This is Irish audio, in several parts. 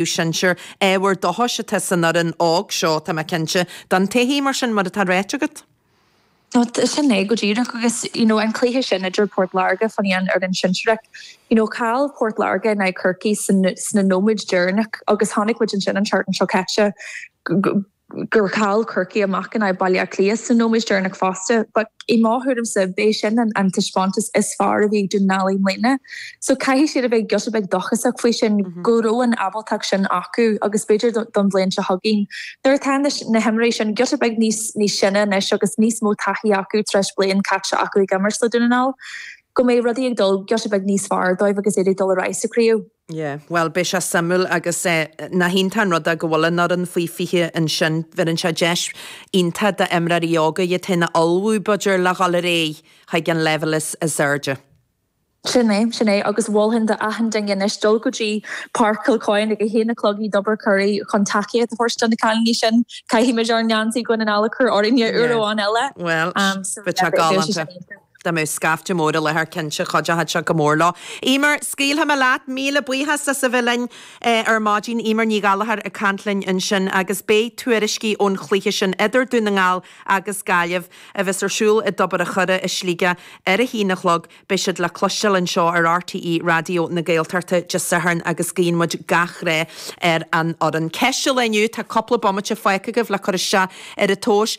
do shinsir. Ábhar dóchais atá san fhoireann óg seo, tá mé cinnte, don todhchaí, mar sin, mar atá ráite agat. Sin é go díreach agus you know an cluiche sin idir Port Láirge fan an fhoireann shinsearach, you know chaill Port Láirge in aghaidh Chorcaí sna nóiméid deireanach agus chonaic muid ansin an tseachtain seo caite go gur chaill Corcaigh amach in aghaidh Bhaile Átha Cliath sna nóiméid deireanach fosta. But i mo thuairimse, b'é sin an taispeántas is fearr a bhí ag Dún na nGall i mbliana. So caithfidh siad a bheith giota beag dóchasach faoi sin, go raibh an ábaltacht sin acu agus b'fhéidir don bhliain seo chugainn, nuair atá na himreoirí sin giota beag níos sine anois agus níos mó taithí acu tar éis bliain caite acu ag imirt le Dún na nGall, go mbeidh rudaí ag dul giota beag níos fearr dóibh agus iad ag dul ar aghaidh sa chraobh. Yeah, bhuel, beidh sé suimiúil agus nach iontach an rud é go bhfuil an fhoireann faoi 20 ansin, bheireann sé deis iontach d'imreoirí óga iad féin a ullmhú, b'fhéidir, le dhul ar aghaidh chuig an leibhéal is airde. Sin é, sin é, agus mholfainn do achan duine anois dul go dtí Páirc Kilcoyne ag a haon a chlog i dTobar a' Choire chun tacaíocht a thabhairt do na cailíní sin. Caithfimid ár ngeansaí Dhún na nGall a chur orainne uair amháin eile. Yeah, bhuel, beidh sé galánta. Dá mbeadh scaifte mór i láthair cinnte chuideochadh sé go mór leo. Emer, scaoilfidh mé leat. Míle buíochas as a bheith linn ar maidin. Emer Ní Ghallchóir ag caint linn ansin agus beidh tuairiscí ón chluiche sin idir Dún na nGall agus Gaillimh a bheas ar siúl i dTobar a' Choire i Sligeach ar a haon a chlog. Beidh siad le cloisteáil anseo ar RTÉ Raidió na Gaeltachta Dé Sathairn agus guíonn muid gach rath ar an fhoireann. Ceist an lae inniu, tá cúpla bomaite fágtha agaibh le cur isteach ar an tomhas.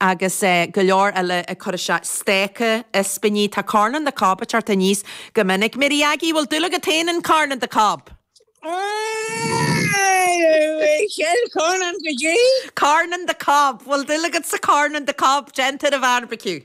agus go leor eile ag cur isteach, steak, ispíní, tá corn on the cob ag teacht aníos go minic. Mary Aggie, Bhfuil dúil agat féin in corn on the cob? Cheal corn on the caidé? Corn on the cob, bhfuil dúil agat sa corn on the cob, déanta ar an bheárbaiciú.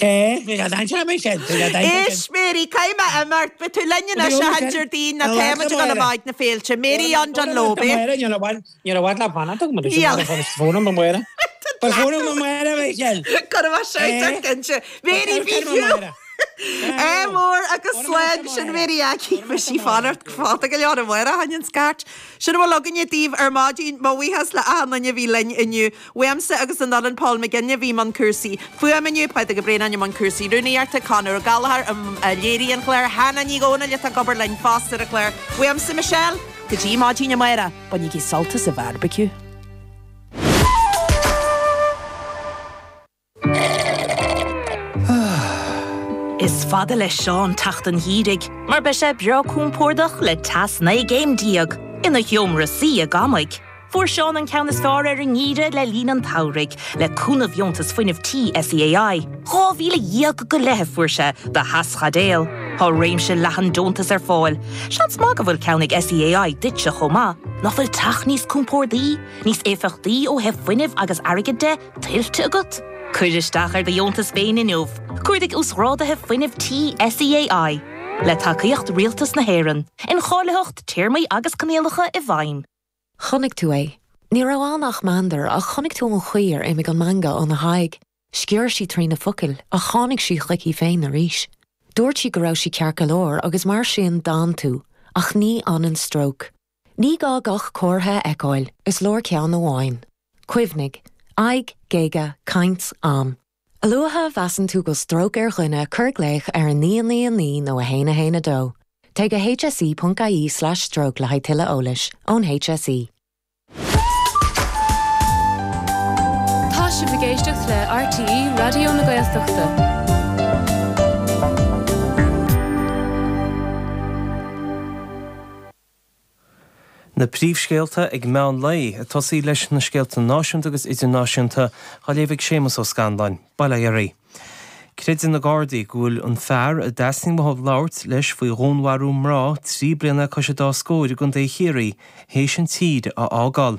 Is Mary, caithfidh mé imeacht, beidh tú linn anois achan Déardaoin, nó táimid ag dul amach na féilte. Mary from Dungloe. Níor mhaith liom fanacht agam anois, tá fón amárach. Tá fón amárach a Michelle! Cuirfidh mé scairt ort cinnte. Mary Bhí fiú! Ádh mór agus slán, sin Mary Aggie, beidh sí ag fanacht go foighdeach go leor amárach fá choinne an scairt. Sin a bhfuil againne daoibh ar maidin, mo bhuíochas le achan duine a bhí linn inniu. Uaimse agus an fhoireann, Paul McGinny a bhí i mbun cúrsaí fuaime inniu, Pádraig Ó Braonáin i mbun cúrsaí rúnaíochta, Conor Ó Gallchóir a léirigh an clár, Hannah Ní Dhomhnaill atá ag obair linn fosta ar an chlár. Uaimse Michelle. Go dtí maidin amárach, bainigí sult as an bheárbaiciú. Is fada le Seán teacht an gheimhridh mar beidh sé breá compordach le teas 19 gcéim ina sheomra suí i gcónaí. Fuair Seán an ceann is fearr ar an ngeimhreadh le linn an tsamhraidh le cúnamh Dheontas Fuinnimh Tí SEAI. Dhá mhíle dhéag go leith a fuair sé do Theaschaidéal. Tá réimse leathan deontas ar fáil. Seans maith go bhfuil ceann ag SEAI duitse chomh maith. Nach bhfuil teach níos compordaí, níos éifeachtaí ó thaobh fuinnimh agus airgid de? tuillte agat? Cuir isteach ar do dheontas féin inniu, Cuardaigh Uasghrádaithe Fuinnimh Tí SEAI, le tacaíocht Rialtas na hÉireann, Incháilitheacht, Téarmaí agus Coinníollacha i bhfeidhm. Chonaic tú é. Ní raibh ann ach meandar, ach chonaic tú an chaoi ar imigh an meangadh óna haghaidh. Sciorr sí trí na focail, ach tháinig sí chuici féin arís. Dúirt sí go raibh sí ceart go leor, agus mar sin d'fhan tú, ach ní fhanann stróc. Ní gá gach comhartha a fheiceáil, is leor ceann amháin. Cuimhnigh, aghaidh, géaga, caint, am. A luaithe a mheasann tú go bhfuil stróc ar dhuine cuir glaoch ar 999 nó 112. Téigh go hse.ie/stroke le haghaidh tuilleadh eolais ón HSE. Tá sibh ag éisteacht le RTÉ Raidió na Gaeltachta. Na príomhscéalta ag meán lae, ag tosaí leis na scéalta náisiúnta agus idirnáisiúnta, á léamh ag Séamas Ó Scanláin, bail ó Dhia oraibh. Creideann na Gardaí go bhfuil an fear a dteastaíonn uathu labhairt leis faoi dhúnmharú mná trí bliana le cois an dá scóir i gContae Chiarraí théis an tír a fhágáil.